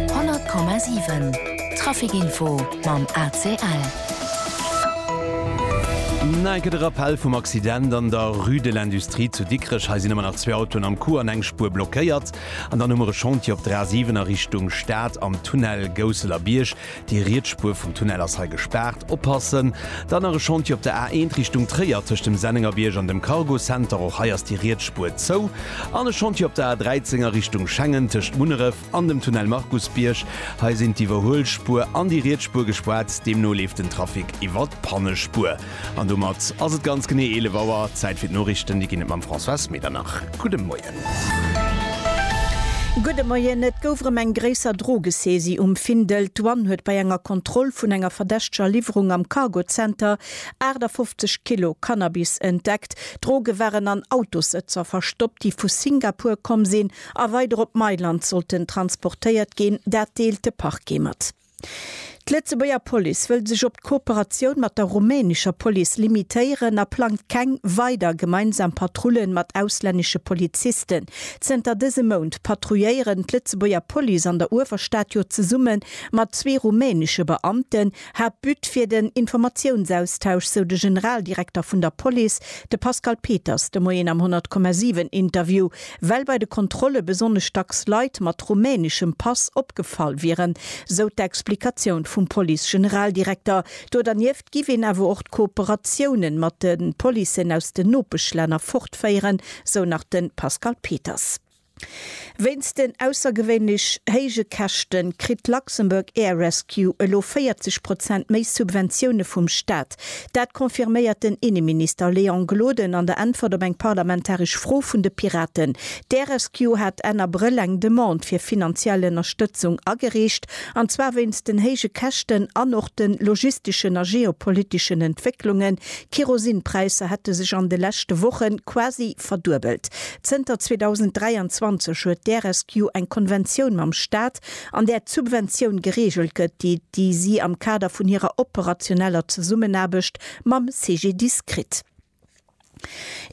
100,7 Traficinfo mam ACL. Nei gëtt e Rappell vum Accident an der Rue de l'Industrie zu Dikrech. Hei sinn ëmmer nach zwee Autoen am Coup an eng Spuer blockéiert. An dann hu mer e Chantier op der A7 a Richtung Stad am Tunnel Gousseler Bierg. Déi riets Spuer vum Tunnel ass hei gespaart. Oppassen! D'anere Chantier op der A1 Richtung Tréier, tëscht dem Sennengerbierg an dem Cargo Center, och hei ass déi riets Spuer zou. An e Chantier op der A13 a Richtung Schengen, tëscht Munneref an dem Tunnel Markusbierg. Hei sinn d'Iwwerhuelspuer an déi riets Spuer gespaart, deemno leeft den Trafic iwwer d'Pannespuer. An domat ass et ganz genee 11 Auer. Zäit fir d'Noriichten. Déi ginn et mam Françoise Medernach. Gudde Moien. Gudde Moien. Et gouf erëm eng gréisser Drogesaisie um Findel. D'Douane huet bei enger Kontroll vun enger verdächteger Liwwerung am Cargozenter 58 Kilo Cannabis entdeckt. D'Droge waren an Autossëtzer verstoppt, déi vu Singapur komm sinn a weider op Mailand sollten transportéiert ginn. Dat deelt de Parquet mat. D'Lëtzebuerger Police wëll sech op d'Kooperatioun mat der rumänescher Police limitéieren a plangt keng weider gemeinsam Patrullen mat auslännesche Polizisten. Zënter dësem Mount patrouilléieren d'Lëtzebuerger Police an der Uewerstad jo zesumme mat zwee rumänesche Beamten. Haaptbut wier den Informatiounsaustausch, sou de Generaldirekter vun der Police, de Pascal Peters de Moien am 100,7 Interview. Well bei de Kontrolle besonnesch dacks Leit mat rumäneschem Pass opgefall wieren, sou d'Explikatioun vum Police-Generaldirekter. Do dernieft giff een awer och d'Kooperatiounen mat de Policen aus den Nopeschlänner fortféieren, sou nach de Pascal Peters. Wéinst den aussergewéinlech héije Käschten, kritt d'Luxembourg Air Rescue elo 40 Prozent méi Subventioune vum Staat. Dat confirméiert den Inneminister Léon Gloden an der Äntwert op eng parlamentaresch Fro vun de Piraten. D'Rescue hat Enn Abrëll eng Demande fir finanziell Ënnerstëtzung agereecht, an zwar wéinst den héije Käschten an och de logisteschen a geopoliteschen Entwécklungen. D'Kerosinpräisser hätte sech an de leschte Woche quasi verduebelt. Zënter 2023 huet d'Rescue eng Konventioun mam Staat, an där d'Subventioun gereegelt gëtt, déi déi si am Kader vun hirer operationeller Zesummenaarbecht mam CGDIS kritt.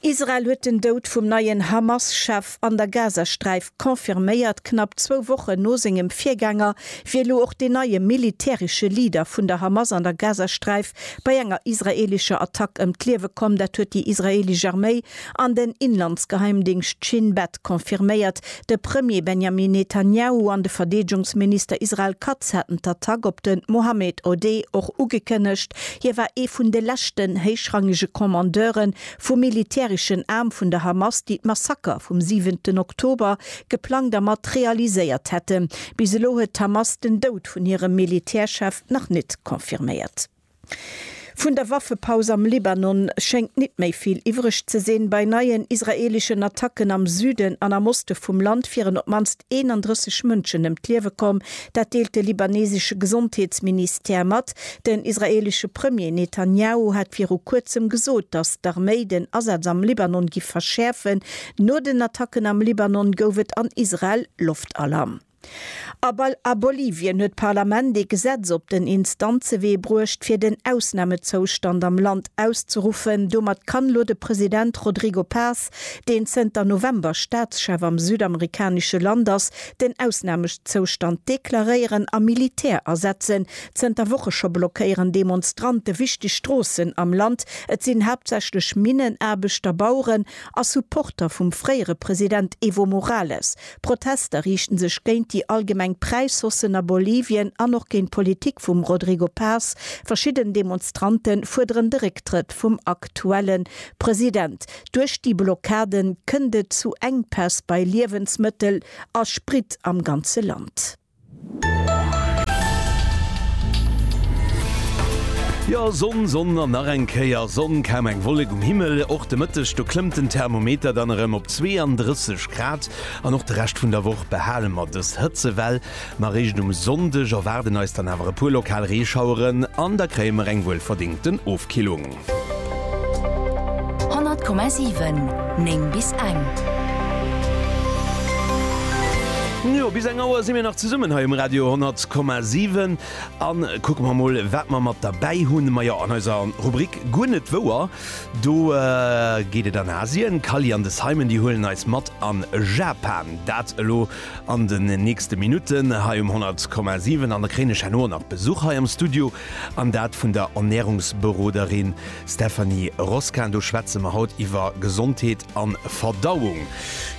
Israel huet den Doud vum neien Hamas-Chef an der Gazasträif confirméiert. Knapp zwou Wochen no sengem Virgänger wier elo och deen neie militäresche Leader vun der Hamas an der Gazasträif bei enger israeelescher Attack ëm d'Liewe komm. Dat huet déi israeelesch Arméi An den Inlandsgeheimdingscht Shin Bet confirméiert, de Premier Benjamin Netanjahu an de Verdeedegungsminister Israel Katz hätten d'Attack op de Mohammed Odeh och ugekënnegt. Hie war ee vun de leschten héichrangege Kommandeure vum militäreschen Aarm vun der Hamas, déi d'Massaker vum siwenten Oktober geplangt a mat realiséiert hätten. Bis elo huet d'Hamas den Doud vun hirem Militärchef nach net confirméiert. Vun der Waffepaus am Libanon schéngt nit méi vill iwwreg ze sinn. Bei neien israeleschen Attacken am Süden an am Oste vum Land wieren op d'mannst 31 Mënschen ëm d'Liewe komm. Dat deelt de libanesesche Gesondheetsministère mat. Den israelesche Premier Netanjahu hat viru kuerzem gesot, datt d'Arméi den Asaz am Libanon giff verschäerfen. No den Attacken am Libanon gouf et an Israel Loftalarm. A Bolivien huet d'Parlament ee Gesetz op den Instanzewee bruecht, fir den Ausnamezoustand am Land auszeruffen. Domat kann elo de President Rodrigo Paz, deen zënter November Staatschef am südamerikanesche Land ass, den Ausnamezoustand deklaréieren a Militär asetzen. Zënter Woche scho blockéieren Demonstrante wichteg Stroossen am Land. Et sinn haaptsächlech Minnenaarbechter, Baueren a Supporter vum fréiere President Evo Morales. D'Protester riichten sech géint déi allgemeng Präishaussen a Bolivien an och géint d'Politik vum Rodrigo Paz. Verschidden Demonstrante fuerderen de Récktrëtt vum aktuelle President. Duerch déi Blockade kënnt et zu Enkpäss bei Liewensmëttel a Sprit am ganze Land. Jo, Sonn, Sonn an nach eng Kéier Sonn. Kaum eng Wollek um Himmel. Och de Mëtteg, do klëmmt den Thermometer dann erëm op 32 Grad. An och de Rescht vun der Woch behale mer dës Hëtzewell. Ma eréischt um Sonndeg erwaarden eis dann awer e puer lokal Reeschaueren an da kréie mer eng wuelverdéngten Ofkillung. 100,7 9 bis eng. Jo, bis eng Auer si mir nach zesummen hei um Radio 100,7 a kucke mer emol, wat mer mat derbäi hunn. Majo, an eiser Rubrik Guer net wouer, do geet et an Asien. D'Kally an de Simon, déi huelen eis mat a Japan. Dat elo an den nächste Minutten hei um 100,7 an da kréien ech herno och nach Besuch hei am Studio. An dat vun der Ernährungsberoderin Stephanie Roskin. Do schwätze mer haut iwwer Gesondheet a Verdauung.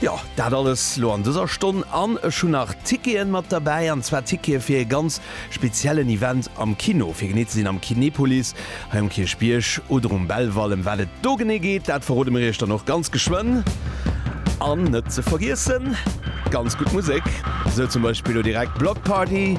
Jo, dat alles lo an dëser Stonn. An ech hunn nach Ticketen mat derbäi, an zwar Tickete fir ee ganz speziellen Event am Kino. Fir genee ze sinn am Kinepolis, hei um Kierchbierg oder um Belval. Ëm wat et do genee geet, dat verrode mir iech dann och ganz geschwënn. An net ze vergiessen, ganz gutt Musek, sou zum Beispill lo direkt Bloc Party